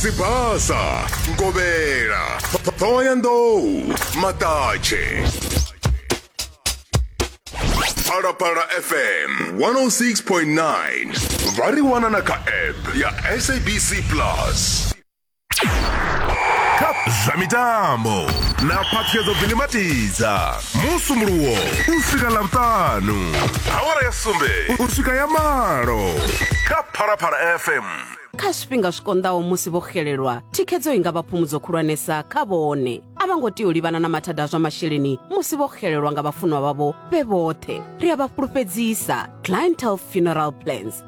sibasa ngovhela thohoyandou maṱatshe phalaphala fm 106.9 vha ri wana na kha app ya sabc plus kha zwa mitambo na phaṱhuyedzo vilimatidza musumuluwo u swika ḽavhutanu awara ya sumbe u swika ya malo kha phalaphala fm kha zwifhinga zwi konḓaho musi vho xelelwa thikhedzo i nga vha phumudzo khulwanesa kha vhone a vha ngo tea u livhana na mathada a zwa masheleni musi vho xelelwa nga vhafunwa vhavho vhe vhoṱhe ri a vha fhulufhedzisa clientel funeral plans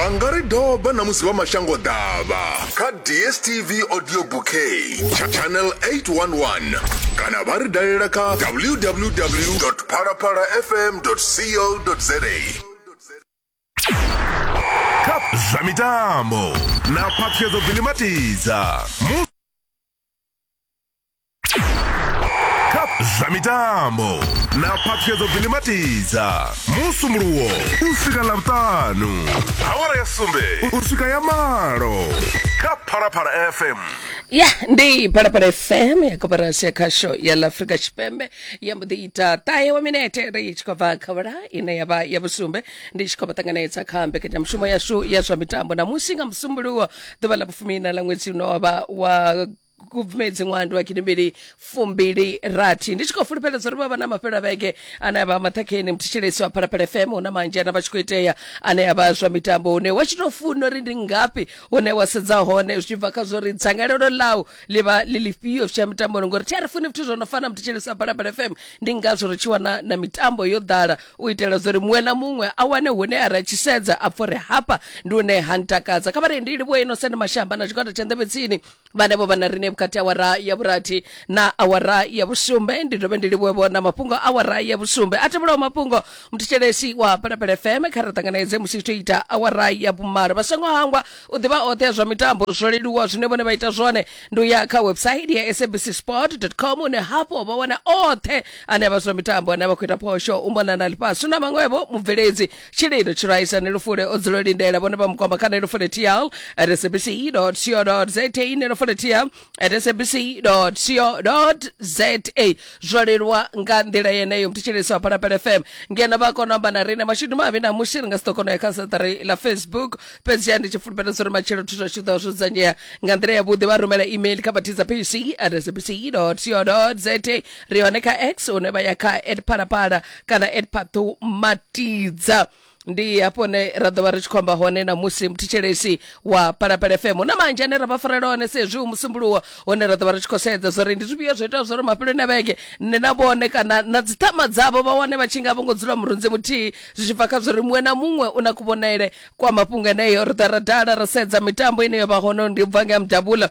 vha nga ri doba na musi vha mashango ḓavha kha dstv audio bouquet tsha channel 811 kana vha ri dalela kha www phalaphala fm co za zwa mitambo na phaṱhuyedzo bilimatidza zwa mitambo na phaṱhuyedzo vilimatiza musumuluwo u swika ḽavhuṱanu awara ya sumbe u swika ya malo kha phalaphala fm ya ndi phalaphala fm ya koporasi ya khasho ya ḽa afrika tshipembe ya mbo ḓi ita ṱahe wa minete ri tshi khou bva kha vhula ine ya vha ya vhusumbe ndi tshi khou vha ṱanganedza kha mbekanyamushumo yashu ya zwa mitambo na musi nga musumbuluwo ḓuvha ḽa vhufumi na ḽa ṅwedzi une wa vha wa kubvumedzi ṅwandi wa gidimbili fumbili rathi ndi tshi khou fulufheledza uri vha vha na mafhelo a vhege ane a vha maṱhakheni muthetshelesi wa phalaphala fm hu na manzhi ana vha tshi khou itea ane a vha zwa mitambo hune wa tshi tou funa uri ndi ngafhi hune wa sedza hone zwi tshi bva kha zwo ri dzangalelo ḽau ḽi vha ḽi lifhio zwi tsha mitambo uri ngori thi a ri funi zwithu zwo no fana muthu tshelisa phalaphala fm ndi ngazwo ri tshi wana na mitambo yo ḓala u itela zwa uri muṅwe na muṅwe a wane hune a ra tshi sedza a pfha uri hafha ndi hune ha ntakadza kha vha ri ndi livhuwa ino sende mashamba na tshigwada tsha nḓevhe tsini vhanevho vha na riṋe vhukati ha awara ya vhurathi na awara ya vhusumbe ndi dovhe ndi livhuwevho na mafhungo a awara ya vhusumbe a tevhelaho mafhungo muthishelesi wa phalaphala fm kha ri ṱanganedze musi zwi tshi ita awara ya vhumalo vha songo hangwa u ḓivha oṱhe ya zwa mitambo zwo leluwa zwine vhone vha ita zwone ndi u ya kha website ya sabc sport com une hafho vha wana oṱhe ane a vha zwa mitambo ane a vha khou ita phosho u mona na ḽifhasi na maṅwevho mubveledzi tshililo tshiraisa ne lufule o dzula lindela vhone vha mukwama kha ne lufule tl sabc co za ne lufule tl sabc co za zwo leluwa nga nḓila yeneyo mthetshelesi wa phalaphala fm ngeno vha kona u amba na riṋe mashudu mavhi na musi ri nga si ḓo kona u ya kha saṱari ḽa facebook fhedzi ya ndi tshi fulufhela zwa uri matshelo thu zwa tshi ḓo zwo dzudzanyea nga nḓila yavhuḓi vha rumela email kha vhathiza pc at sabc co za ri hone kha x hune vha ya kha at phalaphala kana at phathu matidza ndi hafho ne ra ḓo vha ri tshi khou amba hone na musi muthetshelesi wa palapala fm hu na manzhi ane ra vha farela hone sezwi hu musumbuluwo hone ra ḓo vha ri tshi khou sedza zwori ndi zwifhio zwo itaho zwori mafheloni a vhege nṋe na vhone kana na dziṱhama dzavho vha wane vha tshi nga vho ngo dzula murunzi muthihi zwi tshi bva kha zwori muṅwe na muṅwe u na kuvhonele kwa mafhungo eneyo ri ḓa ra dala ra sedza mitambo ine yo vha hone ndi bva nga mudabula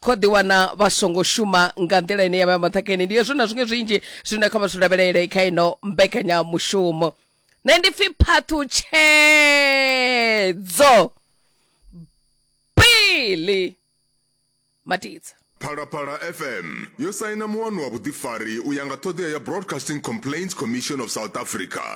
kho ḓi wana vha songo shuma nga nḓila ine ya vha maṱhakheni ndi hezwo na zwiṅwe zwinzhi zwine kha vha zwi lavhelele kha ino mbekanyamushumo nṋe ndi pfi phaṱhutshedzo pili matidza phalaphala fm yo saina muwano wa vhuḓifari u ya nga ṱhoḓea ya broadcasting complaints commission of south africa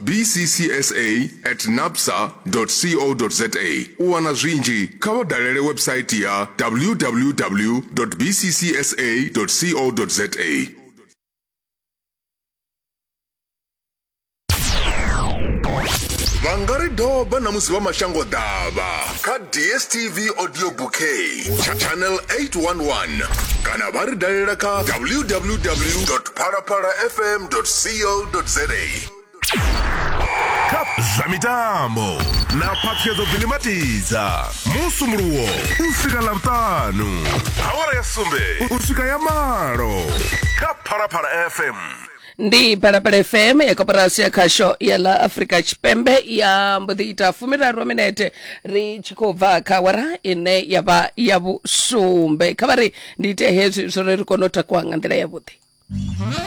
bccsa at napsa co za u wana zwinzhi kha vha dalele website ya www bccsa co za vha nga ri doba na musi vha mashango ḓavha kha dstv audio bouquet channel 811 kana vha ri dalela kha www phalaphala fm co za kha zwa mitambo na phaṱhuyedzo vilimatidza musumuluwo u swika ḽavhuṱanu awara ya sumbe u swika ya malo kha phalaphala fm ndi phalaphala fm ya koporasi ya khasho ya ḽa afrika tshipembe ya mbo ḓi ita fumiraru minete ri tshi khou bva kha awara ine ya vha ya vhusumbe kha vha ri ndi ite hezwi zwo ri ri kone u takuwa nga nḓila yavhuḓi